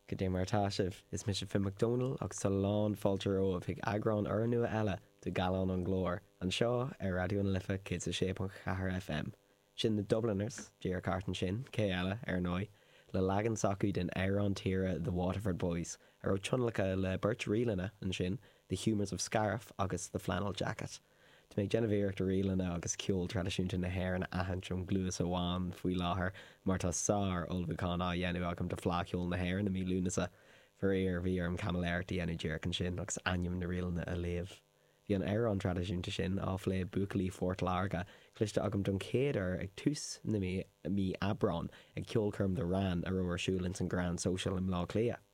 Goidé mar atá sibh, is mise Finn Mac Domhnaill agus tá a lán fáilte romhaibh chuig eagrán urnua eile de Gallán an Ghlóir, anseo ar Raidió na Life 106.4 FM. Sin The Dubliners, díreach thart ansin, cé eile, ar ndóigh, le leagan s'acu den amhrán tíre The Waterford Boys, a raibh tionlacan le beirt ríleanna ansin, The Humours of Scariff agus The Flannel Jacket. Tá mé ag déanamh iarracht ríleanna agus ceol traidisiúnta na hÉireann a aithint ón gcluas amháin faoi láthair mar tá sár-ullmhúchán á dhéanamh agam do Fleadh Cheoil na hÉireann i mí Lúnasa. Faraor, bhí orm caimiléireacht a dhéanamh díreach ansin agus ainm na ríleanna a léamh. Bhí an amhrán traidisiúnta sin, ag plé buachaillí Phort Láirge, cloiste agam don chéad uair ag tús na mí, mí Aibreáin, ag ceolchoirm The Wran a raibh ar siúl ins an Grand Social i mBleá Cliath.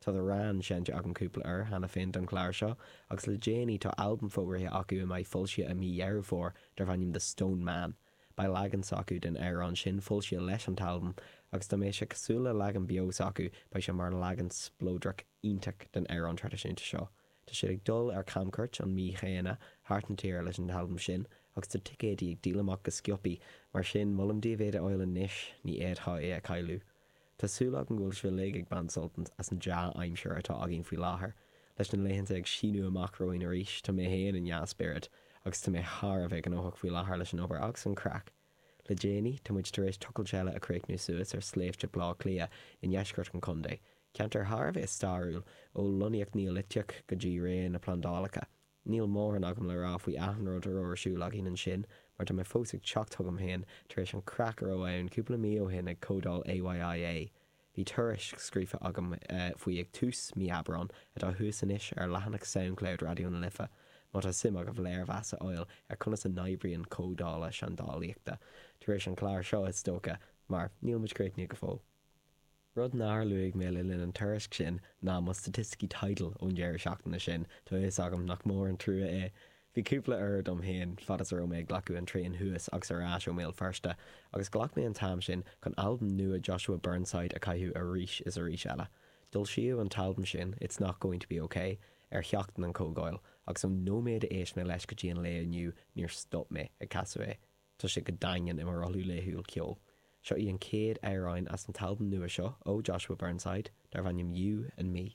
Tá The Wran seinnte agam cúpla uair cheana féin don chlár seo, agus le déanaí tá albam fógraithe acu a mbeidh foilsithe i mí Dheireadh Fómhair darb ainm The Stone Man. Beidh leagan s'acu den amhrán sin foilsithe leis an t-albam, agus dá mbeadh sé cosúil le leagan beo s'acu, beidh sé mar leagan spleodrach iontach den amhrán traidisiúnta seo. Tá siad ag dul ar camchuairt an mhí chéanna thart na tíre leis an t-albam sin, agus tá ticéidí ag díol amach go sciobtha, mar sin molaim daoibh iad a fháil anois, ní fhéadfá é a chailleadh. Tá súil agam go bhfuil sibh uilig ag baint sult as an dea-aimsir atá againn faoi láthair. Leis na laethanta ag síneadh amach romhainn arís, tá mé fhéin i ndea-spiorad, agus tá mé thar a bheith gnóthach faoi láthair leis an obair agus an craic. Le déanaí, tá muid tar éis tochailt eile a chríochnú suas ar Sléibhte Bhleá Cliath i ndeisceart an chontae, ceantar thar a bheith stairiúil, ó lonnaíocht Neoiliteach go dtí ré na bplandálacha. Níl móran agam le rá faoi achan rud a raibh ar siúl againn ansin, mar tá mé fós ag teacht chugam féin tar éis an craic a raibh ann cúpla mí ó shin ag comhdháil AYIA. Bhí tuairisc scríofa agam faoi ag tús mí Aibreán, atá thuas anois ar leathanach Soundcloud Raidió na Life, má tá suim agaibh léirmheas a fháil ar conas a n-oibríonn comhdhála seandálaíochta, tar éis an clár seo is dócha, mar níl muid críochnaithe go fóill. Rud nár luaigh mé le linn an tuairisc sin ná mo staitisticí Tidal ón deireadh seachtaine sin, tá a fhios agam nach mór an trua é. Bhí cúpla uair dom féin fad is a raibh mé ag glacadh an traein thuas agus ar ais ó mBéal Feirste, agus ghlac mé an t-am sin chun albam nua Joshua Burnside a chaitheamh arís is arís eile. D'fhoilsíodh an t-albam sin, It's Not Going to Be Ok, ar sheachtain an chomhdháil, agus ón nóiméad a éist mé leis go dtí an lae inniu níor stop mé ag casadh é. Tá sé go daingean i mo rothlú laethúil ceoil. Seo í an chéad amhráin as an t-albam nua seo ó Joshua Burnside, darb ainm You and Me.